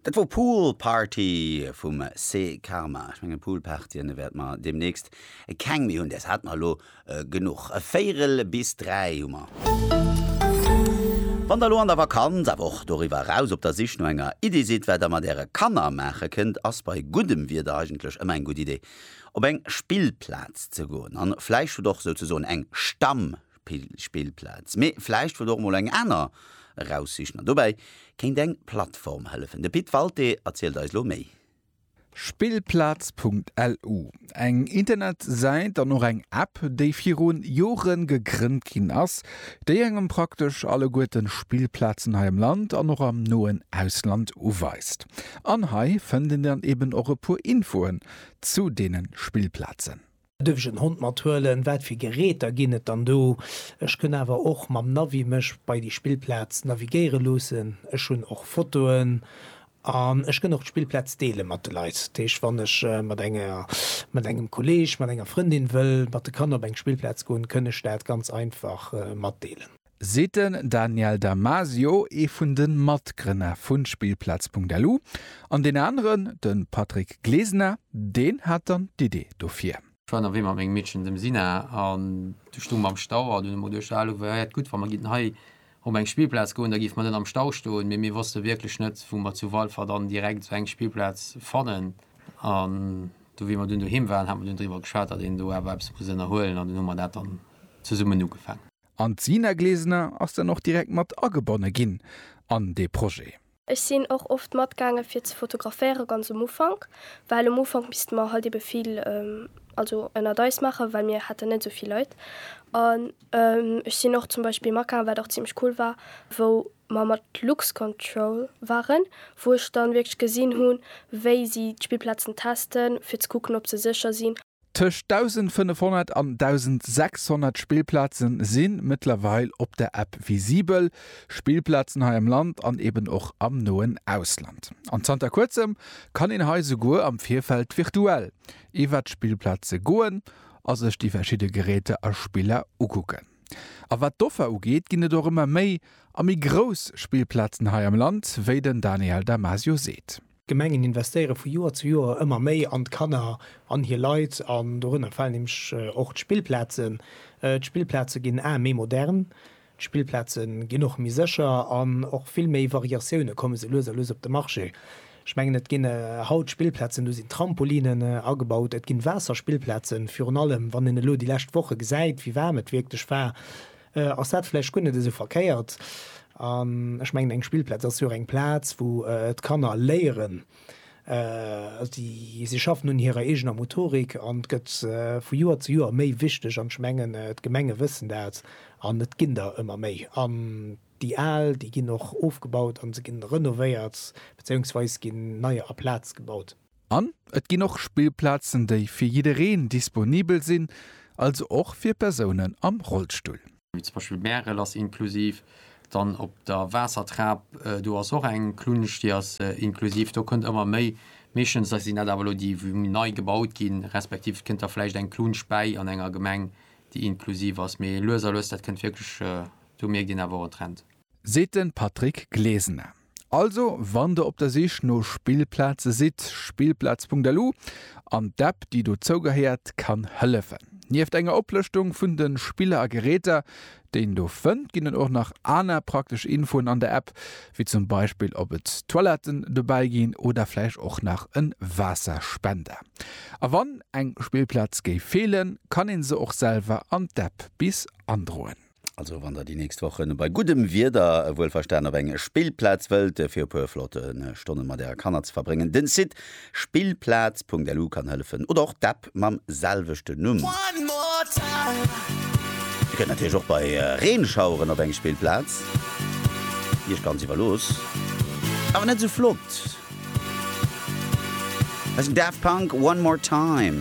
Dat wor Pool Party vum Se Karma. Ech mengen Pool Partyen wäerte mer demnächst keng méi hunn, däers hate mer elo genuch. Véierel bis dräi hu mer. Wann der elo an der Vakanz, awer och doriwwer eraus, op der Sich no enger Iddi sidd, wat der mat äre Kanner maache kënnt, ass bei guddem Wieder eigentlech ëmmer eng gutt Iddi, op eng Spillplaz ze goen. A vläicht hutt och souzesoen eng Stamm. Spillplaz. Mee vläicht wëllt och mol eng aner eraussichen an dobäi kéint eng Plattform hëllefen. De Pit Walté erzielt eis lo méi. Spillplaz.lu, eng Internetsäit an och eng App, déi viru Jore gegrënnt ginn ass, déi engem praktesch alleguerte Spillplazen hei am Land an och am noen Ausland uweist. An hei fënnt een dann eben och e puer Infoen zu deene Spillplazen. Duerf ech en Hond mat huelen? Wat fir Geräter ginn et dann do? Ech kënn awer och mam Navi mech bei déi Spillplaz navigéiere loossen. Ech hunn och Fotoen an ech kënn och d'Spillplaz deele mat de Leit. Dat heescht, wann ech mat enger, mat engem Kolleeg, mat enger Frëndin wëll mat de Kanner op eng Spillplaz goen, kënn ech dat ganz einfach matdeelen. seet den Daniel Damasio, ee vun de Matgrënner vu Spillplaz.lu, an deen aneren, de Patrick Glesner, deen hat dann d'Idee dofir. Ech war ënnerwee mat mengem Meedchen, dem Sina, an du stung mer am Stau an hunn emol duecht, Alo, wär et gutt, wa mer géinten hei op eng Spillplaz goen, da géife mer net am Stau stoen. Mee mir wosste wierklech net, wou mer zu Walfer dann direkt esou eng Spillplaz fannen. An du, wéi mer dunn doheem waren, hate mer dunn driwwer geschwat, datt een do awer eppes muss ënnerhuelen, an dunn hu mer dat dann zesummen ugefaangen. An d'Sina Glesner ass dann och direkt mat agebonne ginn an dee Projet. Ech sinn och oft matgaange fir ze fotograféiere ganz um Ufank, well um Ufank misste mer halt ebe vill also ënnert eis maachen, well mir haten net esou vill Leit. An ech sinn och zum Beispill matgaangen, wat och zimmlech cool war, wou mer mat Luxcontrol waren, wou ech dann wierklech gesinn hunn, wéi si d'Spillplazen testen, fir ze kucken, ob se sécher sinn. Tëscht 1.500 an 1.600 Spillplaze si mëttlerweil op der App visibel, Spillplazen hei am Land an eben och am noen Ausland. An zanter kuerzem kann een hei souguer am Virfeld virtuell iwwert d'Spillplaze goen a sech déi verschidde Geräter a Spiller ukucken. A wat d'Offer ugeet, ginn et och ëmmer méi a méi grouss Spillplazen hei am Land, wéi den Daniel Damasio seet. D'Gemengen investéiere vu Joer zu Joer ëmmer méi an d'Kanner an hir Leit, an dorënner falen nämlech och d'Spillplazen. D'Spillplaze ginn aer méi modern, d'Spillplaze ginn och méi sécher an och vill méi Variatioune komme sou lues a lues op de Marché. Ech mengen, et ginn haut Spillplazen, do sinn Trampolinen agebaut, et ginn Waasserspillplazen, virun allem wann een elo déi lescht Woche gesäit, wéi waarm et wierklech war. ass dat vläicht guer net esou verkéiert. An ech mengen, eng Spillplaz ass jo och eng Plaz, wou d'Kanner léieren. Si schaffen un hirer eegener Motorik an et gëtt vu Joer zu Joer méi wichteg. An ech mengen, d'Gemenge wëssen dat an et ginn der ëmmer méi. An déi al, déi ginn och ofgebaut a se ginn renovéiert, bezéiungsweis ginn neier aplaz gebaut. An et ginn och Spillplazen, déi fir jiddereen disponibel sinn, also och fir Persounen am Rollstull. Wéi zum Beispill Bärel ass inklusiv, dann op der Waassertrap, do ass och eng Klunsch, déi ass inklusiv. Do kënnt ëmmer méi, meeschtens sinn dat awer elo déi, wou méi nei gebaut ginn, respektiv et kënnt da vläicht eng Klunsch bäi an enger Gemeng, déi inklusiv ass. Mee lues a lues, dat kënnt wierklech, do mierkt een awer och en Trend. Seet den Patrick Glesener. Also wann der op der Sich no Spillplaze sidd, Spillplaz.lu an d'App déi dozou gehéiert kann hëllefen. Nieft enger Oplëschtung vun de Spiller a Geräter déi een do fënnt, ginn et och nach aner praktesch Infoen an der App, wéi zum Beispill op et Toiletten dobäi ginn oder vläicht och nach en Waasserspender. A wann eng Spillplaz géif feelen, kann een se och selwer an d'App bis androen. Also wann der déi nächst Wochen bei guddem Wieder, wuel verstan, op eng Spillplaz wëllt fir e puer flotte Stonnen mat äre Kanner ze verbréngen, den Site spillplaz.lu kann hëllefen oder och d'App mam selwechten Numm. Dir kënnt natierlech och bei Reenschaueren op eng Spillplaz, Iech ganz iwwerlooss, awer net esou flott. Hei sinn Daft Punk One More Time.